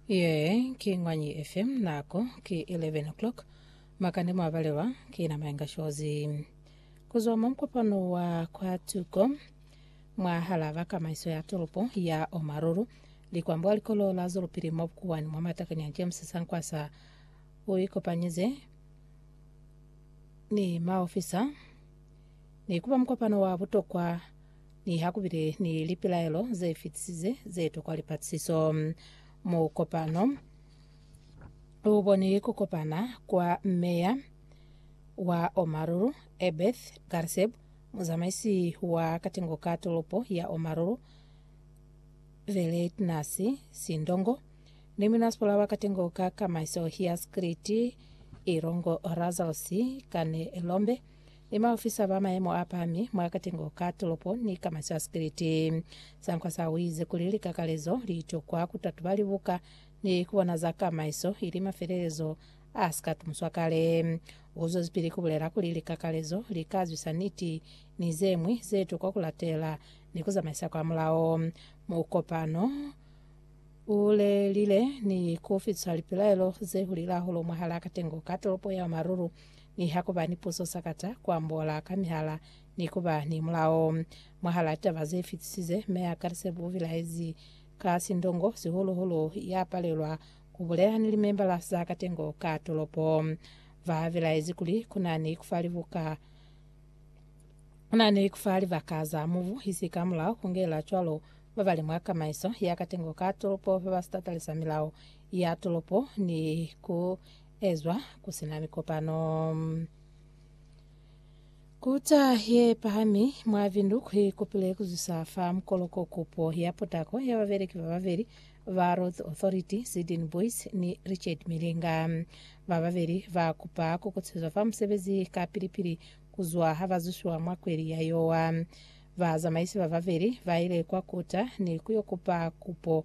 Ye ki Ngwanyi FM nako ki 11 o'clock makande mwa balewa ki na mayenga shozi kuzwa mwa mkopano wa kwa tuko mwa hala ba kamaiso ya toropo ya Omaruru likwambwa likolo la zolopili mwa bukuwani mwa matakanya James Sankwasa o ikopanyize ni maofisa ni kuba mkopano wa butokwa Niha ku bile ni lipilaelo ze fitisize ze tokwa lipatisiso, mukopano u boni ku kopana kwa meya wa Omaruru, Ebeth Garseb, muzamaisi wa katengo ka tolopo ya Omaruru, Veleitnas Sindongo, ni munasipola wa katengo ka kamaiso ya Skriti, Irongo Razals Kanelombe. ni baofisa ba mayemo a pami mwa katengo ka tolopo ni ka masyo a sikiliti. Sankwasa uize kuli likakalezo litokwa kutatuba libuka ni kubona za kamaiso ili mafelelezo a sika tumuswa kale. Uzwezipili kubulela kuli likakalezo li ka zwisa niti ni zemwi zetokwa kulatela ni kuzamaisa kwa mulao mukopano ulelile ni kufitisa lipilaelo zehulile hahulu mwahala katengo ka tolopo ya Maruru ni ha ku ba ni puso sakata, ku ambola ka mihala, ni ku ba ni mulao. Mwahal'a taba ze fitisize, M'e a Kalisepu u bilaezi ka sindongo, sihulu-hulu ya palelwa ku bulela ni limembala za katengo ka tolopo. Ba bilaezi kuli ku na ni ku fa libuka, ku na ni ku fa libaka za mubu, isi ka mulao, ku ngela cwalo ba ba li mwa kamaiso ya katengo ka tolopo ba ba si tatalisa milao ya tolopo, ni ku ezwa ku si na mikopano. Kuta ye pahami mwa Windhoek i kupile ku zwisa fa mukoloko kupo ya potako ya babeleki ba babeli ba Roads Authority, Sidin Boys ni Richard Milinga. Ba babeli ba kupa ku kutezwa fa musebezi ka pili-pili ku zwa ha ba zwisiwa mwa kweli ya Yowa. Bazamaisi ba babeli ba ile kwa Kuta ni ku yo kupa kupo